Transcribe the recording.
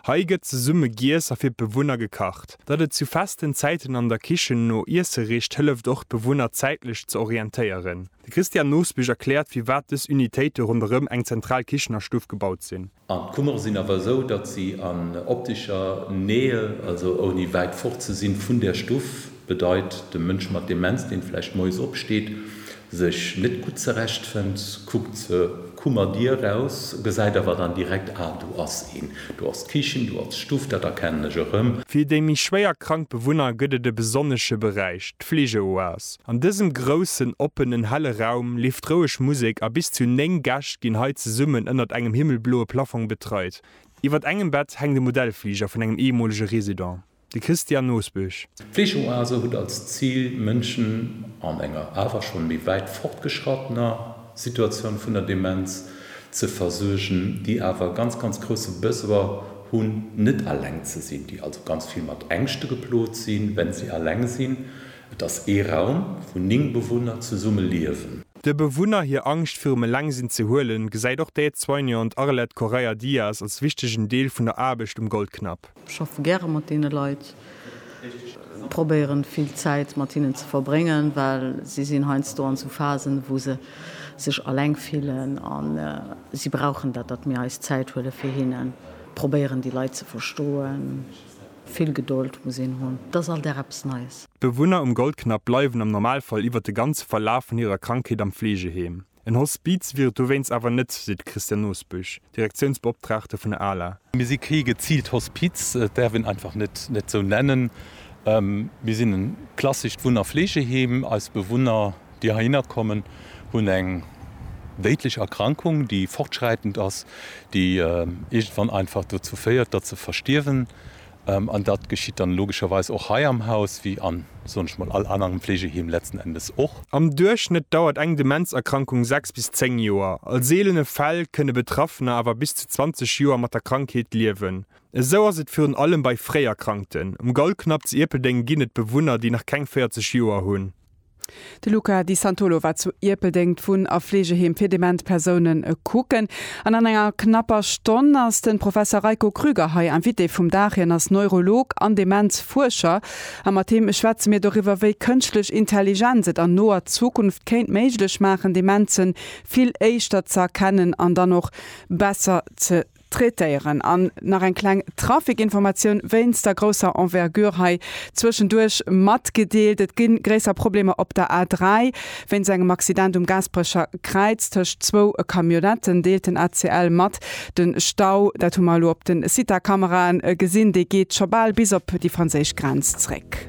Hei gëtt zesumme giess a fir d'Bewunner gekacht. Datt et zu festen Zäiten an der Kichen no Iesse richt, hëlleft och d'Bewunner zäitlech ze orientéieren. De Christian Nosbich erkläert firwat dës Unitéite ronderëm eng zentral Kichennerstuff gebaut sinn. An d'Kummere sinn awer esou, datt si an optischer Nähe, also ouni wäit fort ze sinn vun der Stuff, Bedeit, de Mënsch mat Demenz, deen vläicht moies opsteet, sech net gutt zerecht fënnt, kuckt zur Kummerdier raus, gesäit awer dann direkt, ah, do ass een, do ass d'Kichen, do ass d'Stuff, dat erkennen ech erëm. Fir déi méi schwéier krank Bewunner gëtt et e besonnesche Beräich, d'Fleegeoas. An dësem groussen, oppenen, helle Raum leeft roueg Musek a bis zu 9 Gäscht ginn hei zesummen ënnert engem himmelbloe Plaffong betreit. Iwwert engem Bett hänkt e Modellfliger vun engem eemolege Resident. De Christian Nosbusch. D'Fleegeoase huet als Zil, Mënschen an enger awer schonn méi wäit fortgeschrattener Situatioun vun der Demenz ze versuergen, déi awer e ganz, ganz grousse Besoin hunn, net alleng ze sinn, déi also ganz vill mat Ängschte geplot sinn, wenn si alleng sinn. Et ass ee Raum, wou 9 Bewunner zesumme liewen. De Bewunner hir Angscht virum Elengsinn ze huelen, gesäit och d'Aide-soignante Arlette Correia-Diaz als wichtegen Deel vun der Aarbecht um Goldknapp. Schaffe gäre mat deene Leit, probéieren vill Zäit mat hinnen ze verbréngen, well si sinn heiansdo an sou Phasen, wou se sech alleng fillen a si brauchen dat, datt mir eis Zäit huele fir hinnen, probéieren déi Leit ze verstoen. Vill Gedold muss een hunn, et ass all Dag eppes Neies. D'Bewunner um Goldknapp bleiwen am Normalfall iwwert de ganze Verlaf vun hirer Krankheet am Fleegeheem. En Hospiz wier et dowéinst awer net, seet d'Christiane Nosbusch, Direktiounsbeoptraagte vun der ala. Mir si kee geziilt Hospiz, et däerf een einfach net esou nennen. Mir sinn e klassescht Wunn a Fleegeheem. Eis Bewunner, déi heihinner kommen, hunn eng déidlech Erkrankung, déi fortschräitend ass, déi iergendwann einfach dozou féiert, datt se verstierwen. An dat geschitt dann logescherweis och hei am Haus, wéi an, soen ech mol, all anerem Fleegeheem letzten Endes och. Am Duerchschnëtt dauert eng Demenzerkrankung sechs bis zéng Joer. A seelene Fäll kënne Betraffener awer bis zu 20 Joer mat der Krankheet liewen. Esou ass et virun allem bei Fréierkrankten. Um Gaulknapp zu Ierpeldeng ginn et Bewunner, déi nach keng 40 Joer hunn. De Luca Di Santolo war zu Ierpeldeng d'Wunn a Fleegeheem fir dement Persounen kucken an an enger knapper Stonn ass de Professer Reiko Krüger hei Invité vum Dag. Hien ass Neurolog an Demenzfuerscher a mat him schwätze mir doriwwer, wéi kënschtlech Intelligenz et an noer Zukunft kéint méiglech maachen, Demenze vill éischter ze erkennen an dann och besser ze traitéieren. An nach eng kleng Trafikinformatioun wéinst der grousser Envergure hei zwëschenduerch matgedeelt, Et gi gréisser Problemer op der A3 wéinst engem Accident um Gaasperecher Kräiz tëscht zwou Camionnetten, deelt den ACL mat. De Stau, dat hu mer elo op de Sita-Kamerae gesinn, dee geet scho bal bis op déi franséisch Grenz zréck.